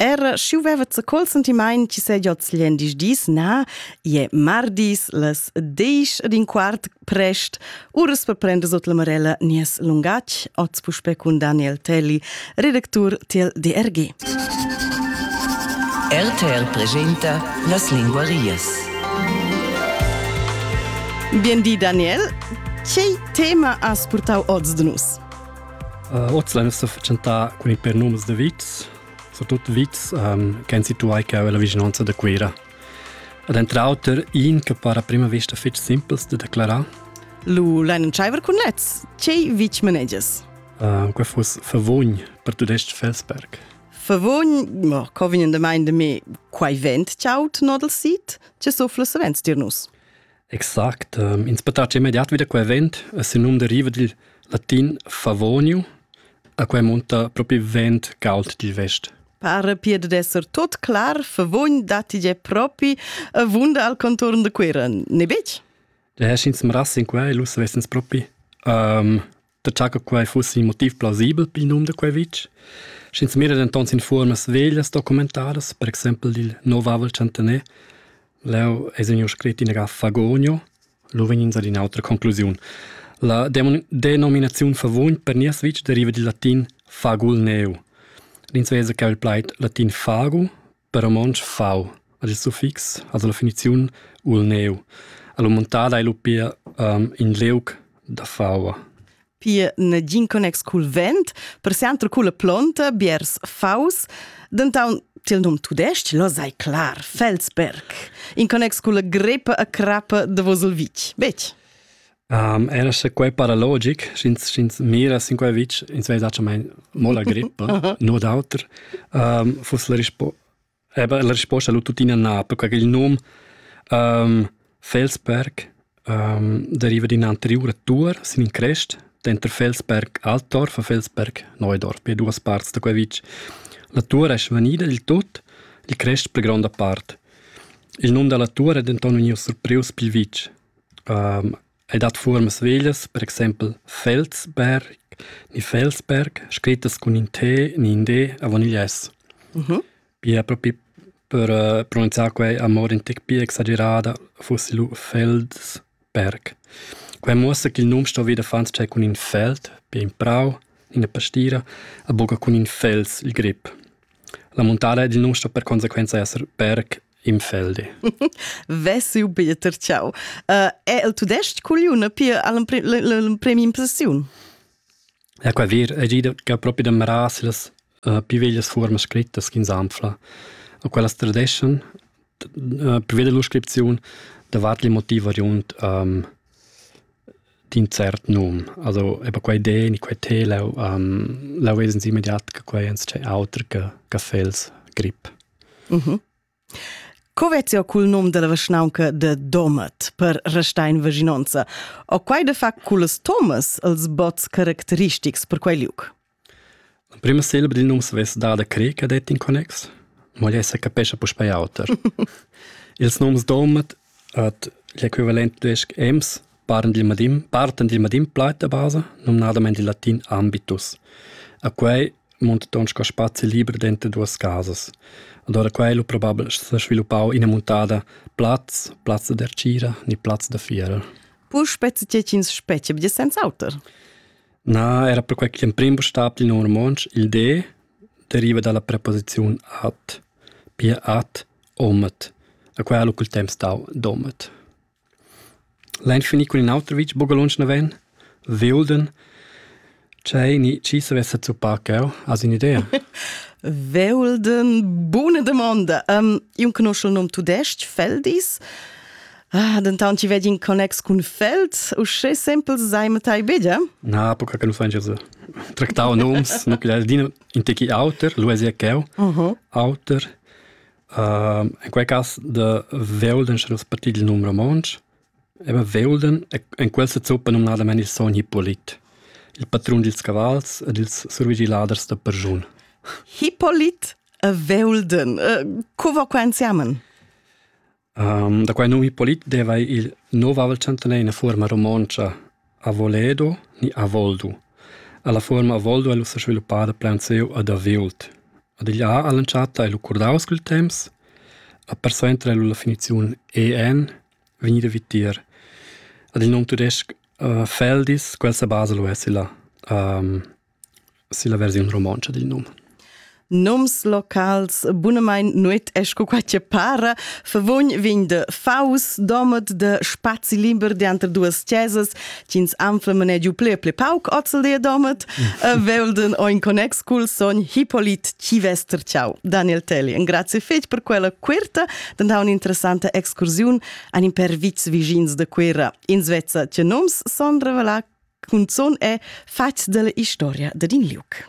Era schiu veva ze col sentimaint chi se jots gliendis dis na, ie mardis las desch ed in quart prest, uras per prender sot la marella nies lungach, oz puspe cun Daniel Telli, redactur tiel DRG. RTL presenta las linguarias. Bien di Daniel, che tema has purtau oz de nus? Hoz l'eira sto fatschentà cun ün pêr noms da vits, surtut vits ch'han situà cheu illa vischnaunca da Cuira. Ed entre auter iin che para a prima vista fich simpels da declarar. Lu lain tschaiver cun lezs. Tgei vitg manegias? Uh, que fuss Favogn per tudestg Felsberg. Favogn, mo, co vegn da mein de me quai vent tchaut nodel sit? Ce so flussavents dir nus? Exact. Ehm, ins po taxar immediat vi da quei vent. Sin num deriva dil latin favoniu, a quei munta propi vent cauld dil vest. Pare piede d'esser tot clar, favogn datti ge propi a vunda al contorn de Cuira, ne bec? De heschins mras in quei, lu savessens propi. Um, da cha che quai fuss il motiv plausibel pel nom da quai vitg. Sch'ins mira denton sin fuormas veglias documentadas, per exempel il novavel centener, leu es vegniu scrit in ga Fagonio, lu vegnins ad in'autra conclusiun. La denominaziun favugn per nies vitg deriva dil latin fagul neu. L'ins vesa che il plaid latin fagu Per romontsch fau ad il suffix, also la finiziun, u il neu. Alla montada ei lu pia um, in leuc da faua. Pia negin connex cul vent, per sempre culla plonta, biers faus, denton til num tudesc, lo sai clar, Felsberg, in connex culla grepa a crappa de Vosolvich, bec? Um, era sche quei para logic, sch'ins sch'ins mira sin quei vitg, ins vei zacchamain mo la grippa, no d'auter, um, fuss la risposta Eben, la risposta lu tuttina na, perché il num um, Felsberg um, deriva d'in anteriura tur sin in crest denter Felsberg Altdorf e Felsberg Neudorf, per duas parts da quei vitg. La tur è svanida dil tut, il crest per gronda part. Il num dalla tur è denton vegnius surprius pil vitg. El dat fuormas veglias, per exaimpel Felsberg ni Felsberg, scrittas cun in T ni in D avon igl S. Pia propi per pronunziar quei amur in tec pia exagerada fussi lu Feldberg. Quei muossa ch'il num sto vit affons tschei cun in feld, pia in prau, ina pastira, a buca cun in fels, il grip. La muntada ed il num sto per consequenza esser Berg im Felde. Vesiu Peter, ciao. Uh, è il tudesc cuglione pia l'empremi impressiun? Ja, qua wir, è già proprio da Maras las uh, più veglias forme scrittas che insanfla. E quellas tradeschan, uh, più vede l'iscrizione, davanti il motivo riund um, d'un cert num. Also, eben quelle Idee, in quei te, lau, um, lau es immediat che quei ens c'è autre che, che fels grip. Mhm. Co vezi o cul nom della vischnaunca de Domat per restar in vicinanza? O quai de fa culs Thomas els bots caracteristics per quei liuc? La prima selva dil nom savess dar da crer che det in connex, mo ei se capescha puspei auter. Ils noms Domat Ot l'equivalent tudais-ch Ems partan dil madin partan dil madin plaid da basa, numnadamain dil latin ambitus. A quai munta ton sco spazi liber denter duas casas. Ad ora quai lu probabel sa sviluppau ina muntada plaz, plazza da tgira ni plazza da fiera. Puspè tge ch'ins spetga be senz'auter. Na, era perquai che l'emprim bustab dil num romontsch, il D, deriva dalla preposiziun at, pia at Omet, a quai ha cul temps stau Domet. Lains finì cun in auter vitg bugalontsch naven, Veulden, C'è ni chi savessa zuppar cheu, has un'idea? Veulden, buna domanda. Um, io conosco il nome tudesc, Feldis. Ah, dentant ci vedi in connex cun Feld, uschè simpel sei ma tai bega? Na, poca che non fan Jesus. Tractau noms, non che dino in tecchi auter, lui è cheu, auter, In quei cass da Veulden, sche nus partit il num romontsch, eba Veulden en quel sezuppa numnadamein il sogn Hippolit, il patrun dils cavals ed ils survigiladers da perschun. Hippolit e Veulden, co va quei ensemen? Um, da quai novi polit deva il novavel chantaner ina fuorma romontscha Avoledo ni Avoldo. La fuorma Avoldo è ussa sviluppada plan seu ad Aviult. Ad igl ha all'entschatta el curdaus cul temps, a persuenter el la finiziun EN vegnida vitier. Ad il nom tudesc uh, Feldis, quel se basa lo essi là. Um, Silla versiun romontscha dil num. Nums locals bunamain nuet è sco quai che para. Favugn vegn de Faus, domat de spazi liber dianter duas chesas, ch'ins anfla manegiu ple ple pauc ozzel de domat, velden o in connex cul sogn Hippolit Civester Ciao. Daniel Telli, grazie fetg per quella querta, dann ha un'interessanta excursiun an in per vits vigins de Cuera. Ins vezza che nums son revelar cunzun è fatg dalla historia dad in liuc.